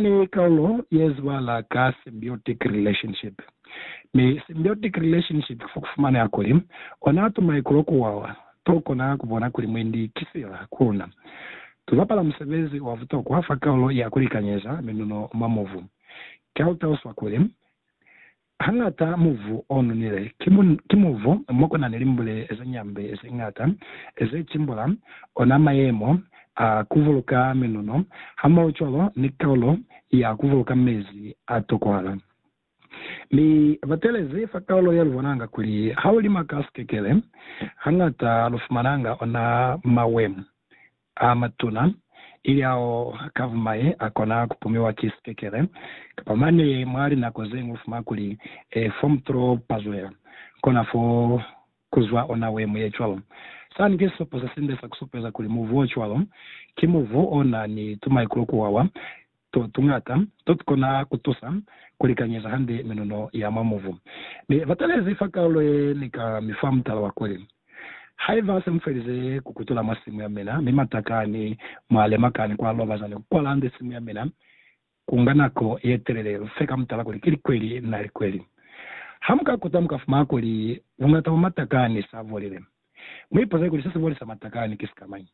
Ni kaulo yezwibala ka symbiotic relationship, mi symbiotic relationship kifo kufumaneha kuli ona ato maikulo kuwawa to kona kubona kuli mwendi ki sila ku luna. Tuzapala musebezi wa butokwa fa kaulo ya kulikanyeza minuno mwa mubu. Kiautauswa kuli Hañata muvu o nonile ki muvu mo ku na ni limbule ze ñambe ze ñata ze cimbula ona mayemo a ku buluka minono hamohocwalo ni kaulo ya ku buluka mezi a tokohala. Mi ba telezi fa kaulo ye lu bonanga kuli ha u lima ka sikekele, hañata lu fumananga ona mawemo a matuna, ili ao ka bumaye a kona ku pumiwa ki sipekele. Kapa mane mwa linako ze ñwi u fuma kuli, E, fo mu to pazwela, kona fo ku zwa ona we mu ye cwalo. Sani ki sisupo se sinde sa ku supeza kuli muvu o cwalo ki muvu o na ni tumaikulo ku wawa, to tuñata to tukona kutusa kulikanyeza hande minuno ya mwa mubu. Ne batalezi fa kalulo ye ni ka mi fa mutala wa kuli, Haiba se mufelize kukutula mwa simu yamina, mi matakani mwa lemakani kwa lobaza ni kukwala hande simu yamina, kunga nako yetelele lufe ka mutala kuli ki likweli na likweli. Ha muka kuta mukafumana kuli buñata bwa matakani sa bolile. Muipuze kuli sesibolisa matakani ki sikamañi.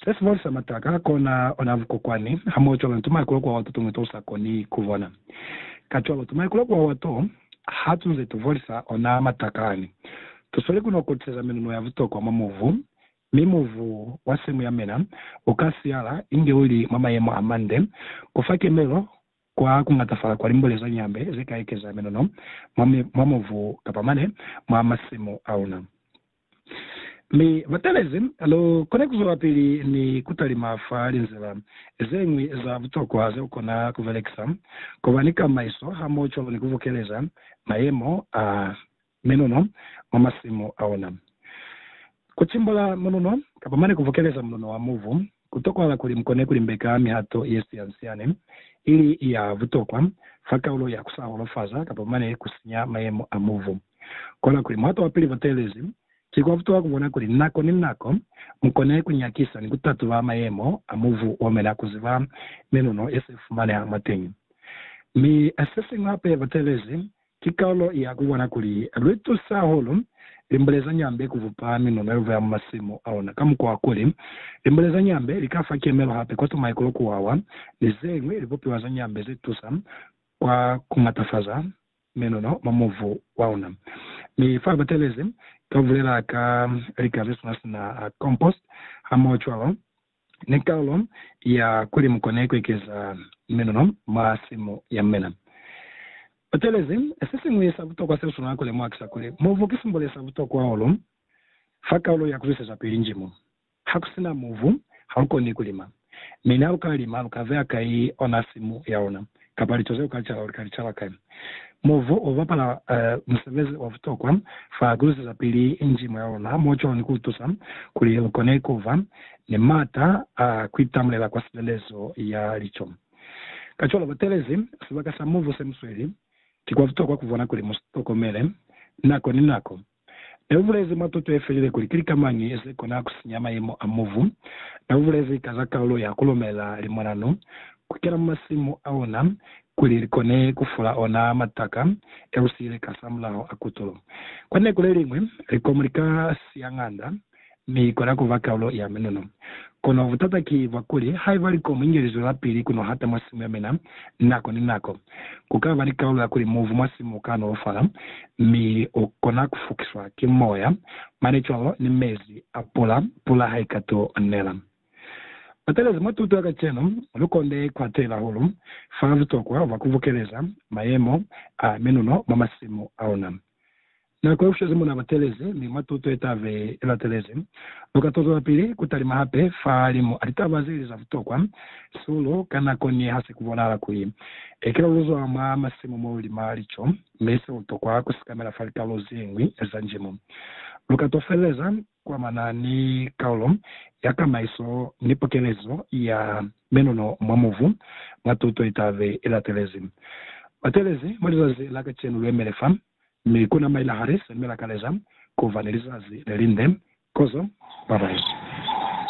Se si folisa mataka kona ona vukokwani hamoho cwalo ni tumaikulo kuwawa to tumwi to usa koni kubona. Kacwalo, tumaikulo kuwawa to ha tu nze tu folisa ona mataka ani. Tu sweli ku no kotiseza menuno ya butokwa mwa mubu, mi mubu wa semu ya mena u ka siyala inge u li mwa mayemo a mande, ku fa kemelo Kwa kuñatafala kwa limbule za nyambe ze ka ekeza minono mwa, mwa mubu kapa mane mwa masimu auna. Mi batalezi, lu kona kuzwelapili ni kutalima fa linzila zeñwi za butokwa ze ukona kubelekisa, kuba ni kamaiso hamoho cwalo ni kubukeleza mayemo a Minuno mwa masimu aona. Kucimbula mununo kapa mane kuvokeleza mununo wa mubu kutokwahala kuli mukone kulimbeka mihato yesiyansyane ili ya butokwa fa kaulo ya kusa holofaza kapa mane kusinya mayemo a mubu. Kola kuli muhato wapili boteelezi, ki kwa butokwa kubona kuli nako ni nako mukone kunyakisa ni kutatuba mayemo a mubu omena kuziba minuno yesifumaneha mwateñi. Mi sesiñwi hape boteelezi Ki kalulo ya ku bona kuli lwi tusa hahulu limbule za nyambe ku bupa minuno ye buya mu masimu a ona, ka mukwa wa kuli, limbule za nyambe li ka fa kemelo hape kwa tumaikulo, ku wawa, ni ze ñwi libupiwa za nyambe ze tusa kwa ku matafaza minuno mwa mubu wa ona. Mi fa batelezi, ka bulela ka lika ze sina-sina, compost, hamoho cwalo, ni kaulo ya kuli mu kone ku ekeza minuno mwa simu ya mina. U talezi, Se siñwi sa butokwa se u swanela ku lemuha ki sa kuli, mubu ki simbole sa butokwa hahulu fa kaulo ya ku zwisezapili njimu. Ha ku si na mubu, ha lu koni ku lima. Mi ni ha lu ka lima, lu ka beya kai ona simu ya luna? kapa lico zeo kalicala uli kalicala kai. Muvu ubapala musebezi wabutokwa fa kulusezapili njimo yaona mo cwalo ni kuutusa kuli lukone kuba ni maata a kuitamulela kwa silelezo ya lico. Kacwalo batelezi sibaka sa muvu semusweli, kikwabutokwa kubona kuli musitokomele nako ni nako. Ne u bulezi mwa tuto ye felile kuli ki lika mañi ze kona ku sinya mayemo a mubu. Ne u bulezi ka za kalulo ya ku lumela limonanu ku kena mwa masimu a ona kuli li kone ku fula ona mataka e lu siile kasamulaho a kutulo. Kwa neku le liñwi, likomu li ka siya ng'anda mi ikona ku ba kaulo ya minunu. Kono butata ki bwa kuli, haiba likomu inge lizwelapili ku no hata mwa simu ya mina nako ni nako, ku ka ba ni kaulo ya kuli muvu mwa simu u ka nolofala mi u kona ku fukiswa ki moya, mane cwalo ni mezi a pula, pula ha i ka tu nela. Batalezi mwa tuto ya kacenu, lu konde ku atela hahulu fa butokwa bwa ku bukeleza mayemo a minunu mwa masimu a luna. Na kolwisezi muna batelezi, mi mwa tuto yetabe ilatelezi, luka tozwelapili kutalima hape fahalimu a litaba zeli za butokwa, sulu, ka nako ni hase kubonahala kuli ekela luzwa mwa masimu molulima lico, mi se lutokwa kusikamela fa likalolo zeñwi za njimo. Luka tofeleza kuamana ni kalulo ya kamaiso ni pokelezo ya menono mwa mubu mwa tuto yetabe ilatelezi. Batelezi, mwa lizazi la kacenu luemele fa. Mi kuna maila hali selemela kaleza kuba ni lizazi lelinde kozo babayi.